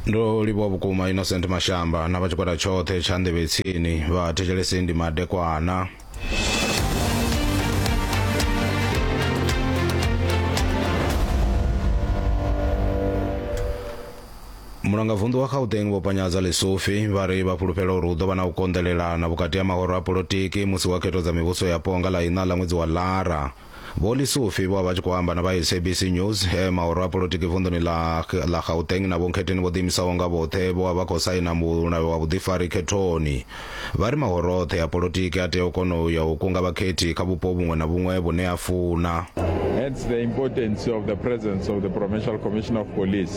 ndo livhuwa vhukuma innocent mashamba na vha tshigwada tshoṱhe tsha nḓevhetsini vha thetshelesi ndi madekwana mulangavunḓu wa gauteng vho panyadza lesofi vha ri vha fhulufhela uri hu ḓo vha na u konḓelelana vhukati ha mahoro a polotiki musi wa khetho dza mivhuso yapo nga ḽa iṋa ḽa ṅwedzi wa lara Vho Lisufi vho vha tshi khou amba na vha SABC News e mahoro a polotiki vunḓuni ḽa ḽa Gauteng na Vho Nkhetheni vho ḓiimisaho nga vhoṱhe vho vha vha khou saina mulayo wa vhuḓifari khethoni. Vha ri mahoro oṱhe a polotiki a tea u kona u ya u kunga vhakhethi kha vhupo vhuṅwe na vhuṅwe vhune a funa. Hence the importance of the presence of the Provincial Commissioner of Police.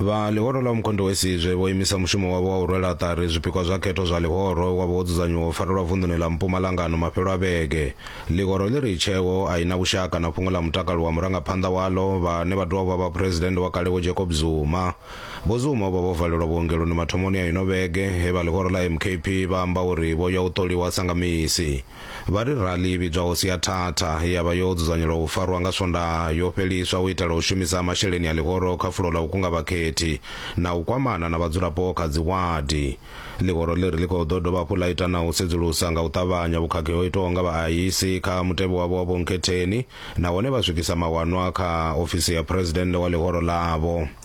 vha ḽihoro ḽa umkhonde we sizwe vho imisa mushumo wavho wa u rwela ṱari zwipikwa zwa khetho zwa ḽihoro wa vho wo dzudzanyiwa u farelwa vunḓuni ḽa mpumalangano mafhelo a vhege ḽihoro ḽi ri tsheo a i na vhushaka na fhungo ḽa mutakalo wa murangaphanḓa waḽo vhane vha dovha vha vha phuresidennde wa kale vho jacob zuma vho zuma vho vha vho valelwa vhuongeloni mathomoni a ino vhege he vha ḽihoro ḽa mkp vha amba uri vho ya u ṱoliwa sa nga misi Vha ri rali i vhidzwaho Siathatha ye ya vha yo dzudzanyelwa u farwa nga Swondaha yo fheliswa u itela u shumisa masheleni a ḽihoro kha fulo ḽa u kunga vhakhethi na u kwamana na vhadzulapo kha dziwadi. Ḽihoro ḽi ri ḽi khou ḓo dovha hafhu ḽa ita na u sedzulusa nga u ṱavhanya vhukhakhi ho itwaho nga vhaaisi kha mutevhe wavho wa vhunkhetheni nahone vha swikisa mawanwa kha ofisi ya Phresidennde wa ḽihoro ḽavho.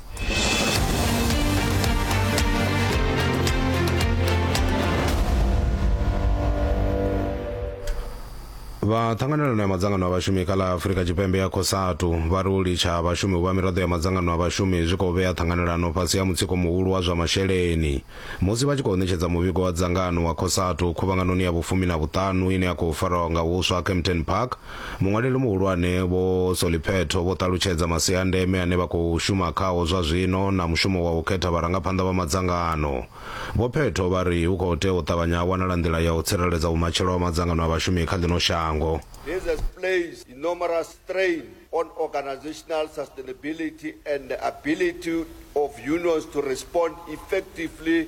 vha ṱhanganelano ya madzangano a vhashumi kha ḽa afurika tshipembe ya cosatu vha ri u litsha ha vhashumi u vha miraḓo ya madzangano a vhashumi zwi khou vhea ṱhanganelano fhasi ha mutsiko muhulu wa zwa masheleni musi vha tshi khou ṋetshedza muvhigo wa dzangano wa cosatu khuvhanganoni ya vhufumi na vhuṱanu ine ya khou farwa nga huswa kempton park Muṅwaleli muhulwane Vho Soliphetho vho ṱalutshedza masia a ndeme ane vha khou shuma khao zwa zwino na mushumo wa u khetha vharangaphanḓa vha madzangano. Vho Phetho vha ri hu khou tea u ṱavhanya ha wanala nḓila ya u tsireledza vhumatshelo ha madzangano a vhashumi kha ḽino shango. This has placed enormous strain on organisational sustainability and the ability of unions to respond effectively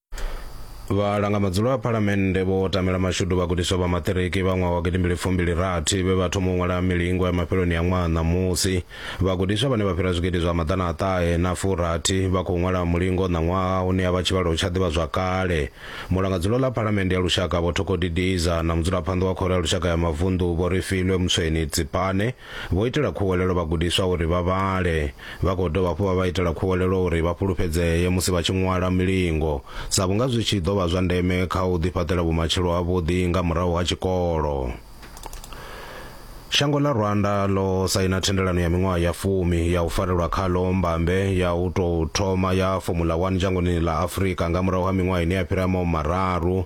vhalanga madzulo a phalamennde vho tamela mashudu vhagudiswa vha maṱiriki vha ṅwaha wa gidimbili fumbili rathi vhe vha thoma u ṅwala milingo ya mafheloni ya ṅwaha ṋamusi vhagudiswa vhane vha fhira zwigidi zwa maḓana a ṱahe na furathi vha khou ṅwala mulingo ṋaṅwaha une ya vha tshivhalo tsha ḓivha zwa kale mulanga dzulo ḽa phalamennde ya lushaka vho thokodidiza na mudzulaphanḓa wa khoro ya lushaka ya mavunḓu vho ri filwe mutsweni tsipane Vho itela khuwelelo vhagudiswa uri vha vhale. Vha khou dovha hafhu vha vha itela khuwelelo uri vha fhulufhedzee musi vha tshi ṅwala milingo, sa vhunga zwi tshi ḓo vha zwa ndeme kha u ḓifhaṱela vhumatshelo havhuḓi nga murahu ha tshikolo. Shango ḽa Rwanda ḽo saina thendelano ya miṅwaha ya fumi ya u farelwa khaḽo mbambe ya u tou thoma ya Formula One dzhangoni ḽa Afrika nga murahu ha miṅwaha ine ya fhira mararu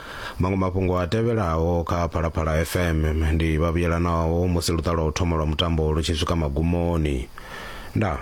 Maṅwe mafhungo a tevhelaho kha Phalaphala FM ndi vhavhuyelanaho musi luṱa lwa u thoma lwa mutambo lu tshi swika magumoni. Ndaa.